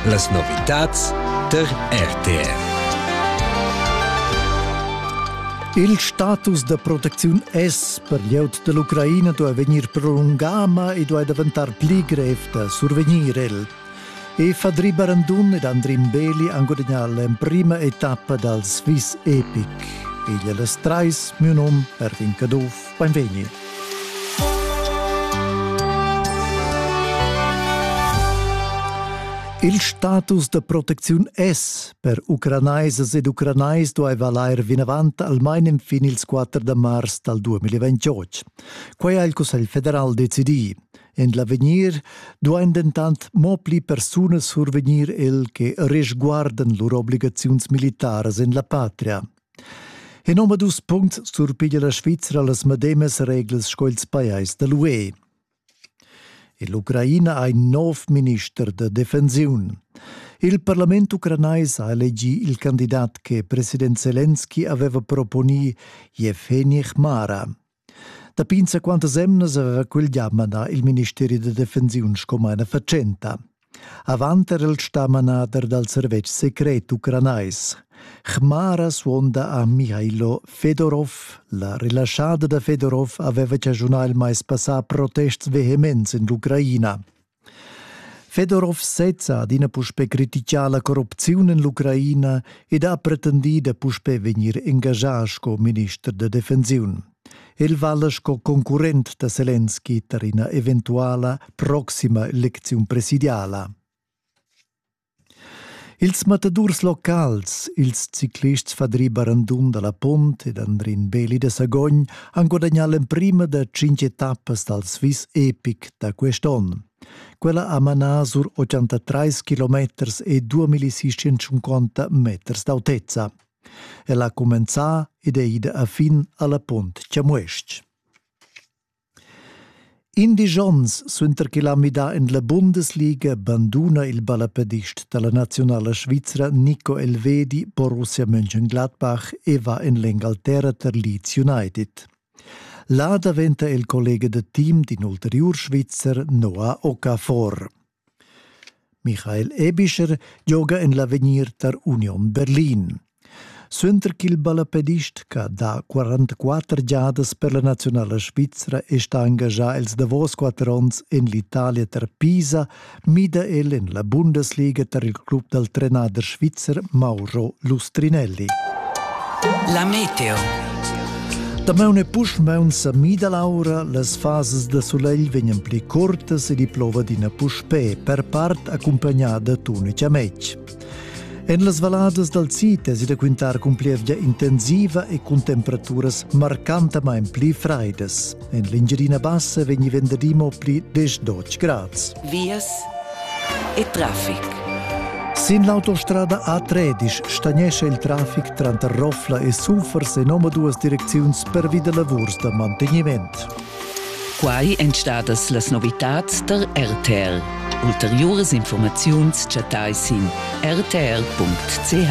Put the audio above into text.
Las novitads tar RTR. Il status da protecziun es per glieud da l'Ucraina duai vegnir prolungà, ma i duai daventar pli grev da survegnir el. Eva Dribarandun ed Andrin Beli han gudagnà l'emprima etappa dal Swiss Epic. Igl è las trais, miu num, Erwin Caduff. Beinvegni. Il status da protecziun es per ucranaisas ed ucranais duaiva lair vinavant almain infin ils 4 da mars dal 2028. Quai ha il Cussegl federal decidì. En l'avegnir duain dentant mo pli persunas survegnir el che resguardan lur obligaziuns militaras en la patria. En omadus puncts surpiglia la Svizra las medemas reglas sco ils pajais da l'UE. L'Ucraina ha in nov minister da defensiun. Il parlament ucranais ha elegì il candidat che president Zelensky aveva proponì, Yevgeny Hmara. Dapi insaquantas emnas aveva quel gia manà il ministeri da defensiun sco maina fatschenta. Avant era el stà manader dal servetsch secret ucranais. Chmara suonda a Mihailo Fedorov. La relaschada da Fedorov aveva chaschunà il mais passà protests vehements en l'Ucraina. Fedorov sezza ha adina puspè criticà la corrupziun en l'Ucraina ed ha pretendì da puspè vegnir engaschà sco minister da defensiun. El vala sco concurrent da Selenski tar ina eventuala proxima elecziun presidiala. Ils matadurs locals, ils ciclists Fadri Barandun dalla Pont ed Andrin Beli da Sagogn han gudagnà l'emprima da tschintg etappas dal Swiss Epic da quest'onn. Quella ha manà sur 83 kilometers e 2650 meters d'autezza. El ha cumenzà ed è ida a fin alla Pont Chamues-ch. Indisch ons suenter ch'el ha midà en la Bundesliga banduna il ballapadist da la naziunala svizra Nico Elvedi Borussia Mönchengladbach e va en l'Engalterra tar Leeds United. Là daventa el collega da team d'in ulteriur Svizzer Noah Okafor. Michael Ebischer gioga en l'avegnir tar Union Berlin. Suenter ch'il ballapedist ch'ha dà 44 giadas per la naziunala svizra è stà engaschà els davos quatter onns en l'Italia tar Pisa, mida el en la Bundesliga tar il club dal trenader svizzer Mauro Lustrinelli. La meteo Damaun e puschmaun sa mida l'aura, las fasas da sulegl vegnan pli curtas ed i plova d'ina puspè, per part accompagnada tun e chamec. En las valladas dal sid è da quintar cun plievgia intensiva e cun temperaturas marcantamain pli fraidas. En l'Engiadina Bassa vegni venderì mo pli diesch grads. Vias e traffic. Sin l'autostrada A13 stagnescha il traffic tranter Roffla e Sufers en omaduas direcziuns pervi da lavurs da mantegniment. Quai èn stadas las novitads tar RTL. Ulteriuras informaziuns chattai sin rtl.ch.